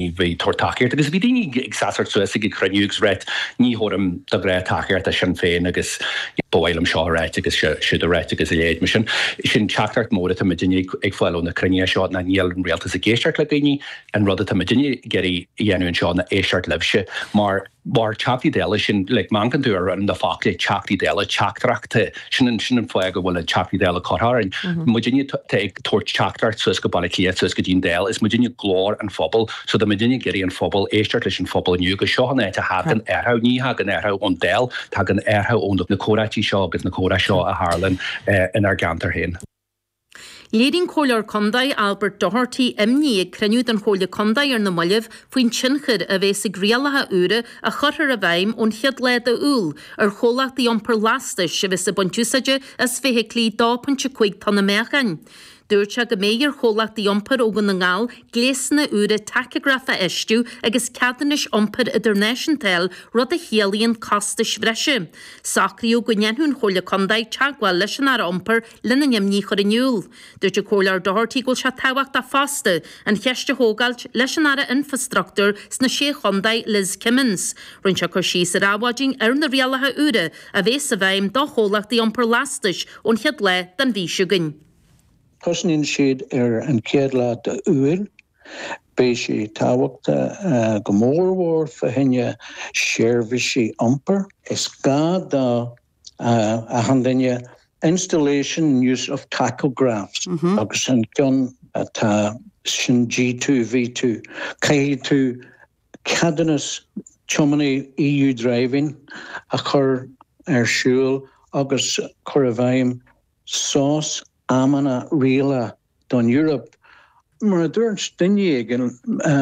ní bheidh tabhairt tacaíochta agus bhí daoine ag seasamh suas ag an chruinniú agus ag rá ní thabharfaidh muid go brách tacaíocht do Shinn Féin agus ba mhaith liom seo a rá agus siúd a rá agus a leithéid mar sin. Sin teachtaireacht mhór atá muidinne ag fáil ó na cruinnithe seo ná níl an rialtas ag éisteacht le daoine, an rud atá muidinne ag iarraidh a dhéanamh anseo ná éisteacht libhse mar Mar Teachtaí Dála, sin, like, má amharcann tú ar na focla Teachtaí Dála, teachtaireachta, sin an, sin an fáth go bhfuil an Teachtaí Dála curtha orainn. Muidinne atá ag tabhairt teachtaireacht suas go Baile Átha Cliath, suas go dtí an Dáil, is muidinne glór an phobail, so tá muidinne ag iarraidh an phobal, éisteacht leis an phobal inniu, go seo an áit a thagann athrú, ní thagann athrú ón Dáil, tagann athrú ó na comhráití seo agus na comhrá seo a tharlann inár gceantar féin. Léirigh an Comhairleoir Contae Albert Doherty imní ag cruinniú den Chomhairle Contae ar na moillibh faoin tionchar a bheas ag rialacha úra a chuirfear i bhfeidhm ón chéad lá de Iúil ar chomhlachtaí iompair lastais a bheas ag baint úsáide as feithiclí 2.5 tonna meáchain. Dúirt sé go mbeidh ar chomhlachtaí iompair ó Dhún na nGall gléasanna úra tacagraif a fheistiú agus ceadúnais iompair idirnáisiúnta a fháil, rud a chiallaíonn costais bhreise. Socraíodh go ndéanfadh an Chomhairle Contae teagmháil leis an Aire Iompair lena n-imní a chur in iúl. Dúirt an Comhairleoir Doherty go bhfuil sé tábhachtach fosta an cheist a thógáilt leis an Aire Infreastruchtúir sna Sé Chontae, Liz Kimmins. Rinne sé cur síos ar Adhmhaidin ar na rialacha úra a bheas i bhfeidhm do chomhlachtaí iompair lastais ón chéad lá den mhí seo chugainn. Tosnaíonn siad ar an chéad lá d'Iúil. Beidh sé tábhachtach go mór mhór fá choinne seirbhísí iompair. Is gá do achan duine installation and use of tachographs agus an ceann atá sin G2, V2, caithfidh tú ceadúnas tiománaí EU Driving a chur ar siúl agus cur i bhfeidhm sos amanna rialaithe. don Eoraip. Mar a dúirt duine éigin,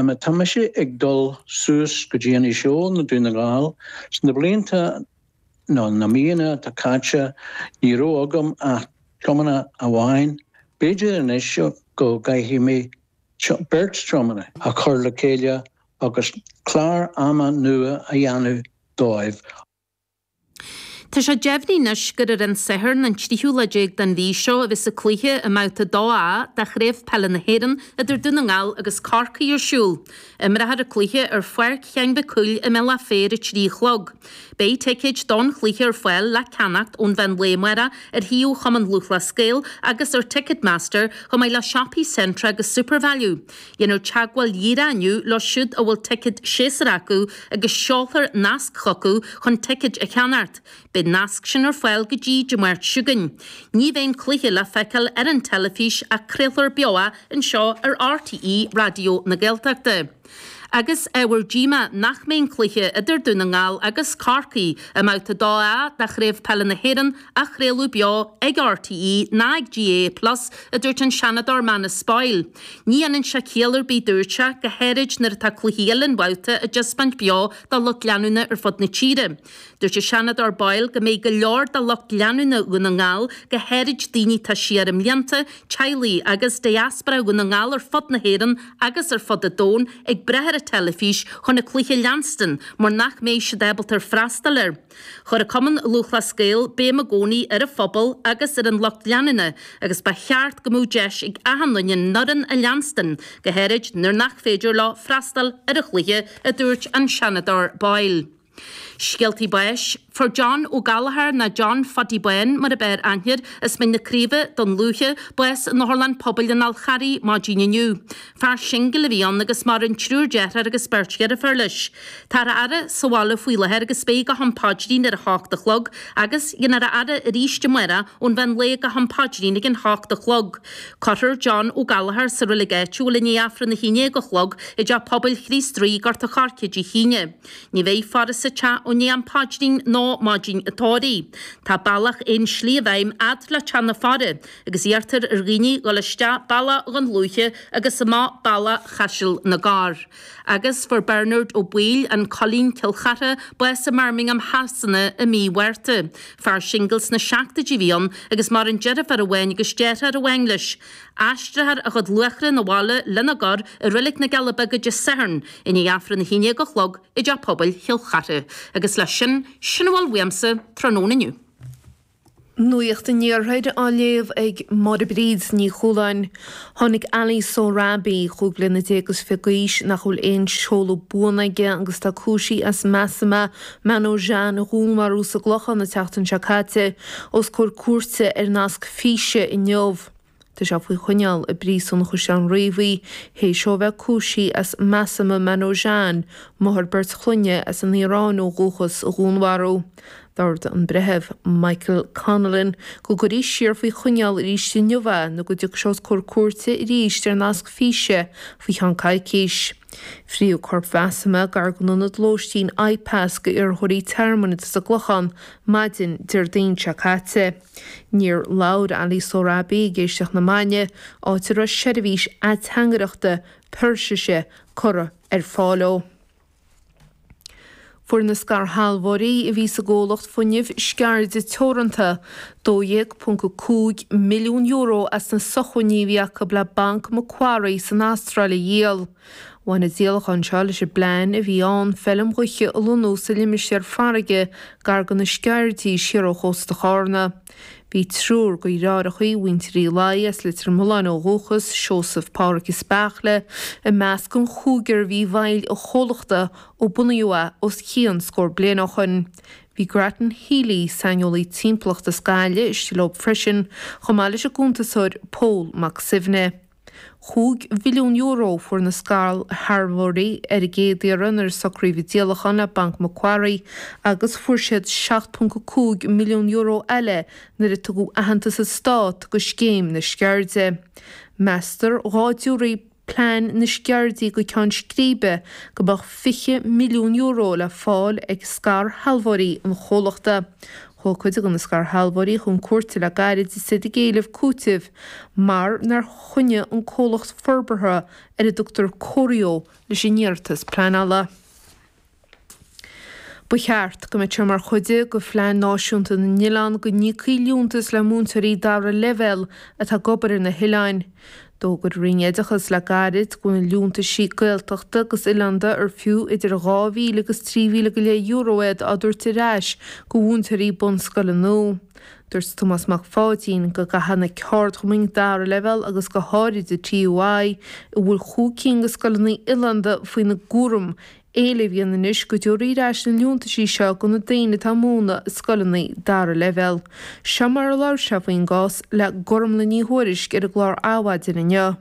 má tá mise ag dul suas go dtí Inis Eoghain i nDún na nGall, sna blianta nó na míonna atá caite, ní raibh agam ach tiománaí amháin, b'fhéidir anois go gcaithfidh mé beirt tiománaí a chur le chéile agus clár ama nua a dhéanamh dóibh. Tá sé deimhin anois gur ar an Satharn an tríú lá déag den mhí seo a bheas an cluiche i mBabhta 2A de Chraobh Peile na hÉireann idir Dún na nGall agus Corcaigh ar siúl. Imreofar an cluiche ar Pháirc Sheáin Mhic Cumhaill i mBealach Féich ar a trí a chlog. Beidh ticéid don chluiche ar fáil le ceannacht ón mheán lae amárach ar shuíomh Chumann Lúthchleas Gael agus ar Ticketmaster chomh maith le siopaí Centra agus Supervalu. Déanfar teagmháil dhíreach inniu leo siúd a bhfuil ticéad séasúir acu agus seolfar nasc chucu chun ticéid a cheannacht. Beidh an nasc sin ar fáil go dtí Dé Máirt chugainn. Ní bheidh an cluiche le feiceáil ar an teilifís ach craolfar beo é anseo ar RTÉ Raidió na Gaeltachta. Agus ábhar díomá nach mbeidh an cluiche idir Dún na nGall agus Corcaigh i mbabhta 2A de Chraobh Peile na hÉireann á chraoladh beo ag RTÉ ná ag GAA plus, a dúirt an Seanadóir Manus Boyle. Ní dhéanann sé ciall ar bith, dúirt sé, go háirid nuair atá cluichí uile an bhabhta á dtaispeáint beo dá lucht leanúna ar fud na tíre. Dúirt an Seanadóir Boyle go mbeidh go leor de lucht leanúna Dhún na nGall, go háirid daoine atá siar i mblianta, teaghlaigh agus diaspora Dhún na nGall ar fud na hÉireann agus ar fud an domhain, ag brath ar an teilifís chun an cluiche a leanstan mar nach mbeidh siad ábalta freastal air. Chuir Cumann Lúthchleas Gael béim i gcónaí ar an phobal agus ar an lucht leanúna agus ba cheart go mbeadh deis ag achan duine an fhoireann a leanstan, go háirid nuair nach féidir leo freastal ar an chluiche, a dúirt an Seanadóir Boyle. Scéaltaí báis, Fuair John Ó Gallchóir, nó John Phadaí Bán mar ab fhearr aithne air as Mín na Craoibhe, Dún Lúiche, bás in Otharlann Pobail an Fháil Charraigh maidin inniu. Fear singil a bhí ann agus maireann triúr dearthár agus beirt dheirfiúr leis. Táthar á fhaire sa bhaile faoi láthair agus beidh go ham paidrín ar a h-ocht a chlog agus déanfar a fhaire arís amárach ón mheán lae go ham paidrín ag an h-ocht a chlog. Cuirfear John Ó Gallchóir sa reilig áitiúil i ndiaidh Aifreann a haon déag a chlog i dteach pobail Chríost Rí, Gort a Choirce Dé hAoine. Ní bheidh faire sa teach i ndiaidh am paidrín ná maidin a' tórraimh. Tá bealach aon slí i bhfeidhm a fhad le teach na faire. agus iarrtar ar dhaoine dul isteach bealach Dhún Lúiche agus amach bealach Chaiseal na gCorr. Agus fuair Bernard Ó Baoill, an Coilín Cill Chartha, bás i mBirmingham Shasana i mí Mhárta. Fear singil sna seachtóidí a bhí ann agus maireann deirfiúr amháin agus deartháir amháin leis. Aistreofar a chuid luaithrigh 'na bhaile lena gcur i Reilig na Cille Bige Dé Sathairn i ndiaidh Aifreann a haon dhéag a chlog i dTeach Pobail Chill Chartha. Agus leis sin, sin a bhfuil uaimse tráthnóna inniu. Nuacht an Iarthair á léamh ag Máire Bríd Ní Chualáin. Tháinig Ali Sohrabi, chúig bliana déag is fiche d'aois, nach bhfuil aon seoladh buan aige agus atá cúisithe as Masoumeh Manojan a dhúnmharú sa gClochán an tseachtain seo caite, os comhair cúirte ar nasc físe inniu. Tá sé faoi choinneáil i bPríosún an Chaisleáin Riabhaigh théis dó a bheith cúisithe as Masoumeh Manojan, máthair beirt chlainne as an Iaráin ó dhúchas, a dhúnmharú. D'ordaigh an Breitheamh Michael Connellan go gcuirfí siar faoi choinneáil arís inniu é nó go dtiocfaidh sé os comhair cúirte arís ar nasc físe faoi cheann coicís. Frítheadh corp Mhasoumeh gar don ionad lóistín IPAS d'iarrthóirí tearmainn atá sa gClochán maidin Déardaoin seo caite. Níor labhair Ali Sorabi ag éisteacht na mbannaí, áit a raibh seirbhís ateangaireachta Peirsise curtha ar fáil leo. Fuair na scairshealbhóirí a bhí sa gcomhlacht fuinneamh sceirde teoranta €12.5 milliún as na sócmhainní a bhí acu le Banc Macquarie san Astráil a dhíol. Bhain an díolachán seo leis an bplean a bhí ann feilm ghaoithe a lonnú sa limistéar farraige gar do na Sceirdí, siar ó chósta Chárna. Bhí triúr dearthaireachaí de mhuintir Uí Laighe as Leitir Mealláin ó dhúchas, Seosamh, Pádraig is Beartla, i measc an chúigir a bhí i bhfeighil an chomhlachta ó bunaíodh é os cionn scór bliain ó shoin. Bhí Grattan Healy, saineolaí timpeallachta as Gaillimh, istigh leo freisin, chomh maith leis an gcuntasóir Pól Mac Suibhne. €5 mhilliún a fuair na scairshealbhóirí ar an gcéad iarraidh nuair a socraíodh an díolachán le Banc MacQuarrie agus fuair siad €7.5 milliún eile nuair a tugadh aitheantas an stáit do Scéim na Sceirde. Meastar dhá dtabharfaí plean na Sceirdí go ceann scríbe go mbeadh €20 milliún le fáil ag scairshealbhóirí an chomhlachta. Chuaigh cuid de na scairshealbhóirí chun cúirte le gairid, is iad ag éileamh cúitimh mar nár choinnigh an comhlacht forbartha ar a dtugtar Corio leis an iarratas pleanála. Ba cheart go mbeadh sé mar chuid de Phlean Náisiúnta na nOileán go n-íocfaí liúntas le múinteoirí dara leibhéal atá ag obair ar na hoileáin. D'fhógair an Roinn Oideachas le gairid go bhfuil na liúntaisí Gaeltachta agus oileánda ar fiú idir €2,000 agus €3,000 go leith euro iad á dtabhairt ar ais do mhúinteoirí bunscoile nua. Dúirt Tomás Mac Pháidín go gcaithfidh na ceardchumainn dara leibhéal agus go háirid an TUI, a bhfuil chúig cinn de scoileanna oileánda faoina gcúram, éileamh a dhéanamh anois go dtabharfaí ar ais na liúntaisí seo do na daoine atá ag múineadh i scoileanna dara leibhéal. Seo mar a labhair sé faoin gcás le Gormlaith Ní Thuairisg ar an gclár Adhmhaidin inniu.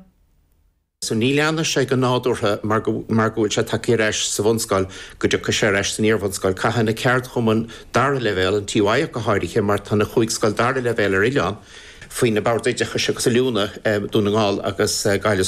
So ní leanfaidh sé go nádúrtha mar go mar go bhfuil sé tagtha ar ais sa bhunscoil go dtiocfaidh sé ar ais san iarbhunscoil. Caithfidh na ceardchumainn dara leibhéal, an TUI ach go háirithe mar tá na chúig scoil dara leibhéal ar oileáin, faoi na Boird Oideachais agus Oiliúna, Dún na nGall agus Gaillimh.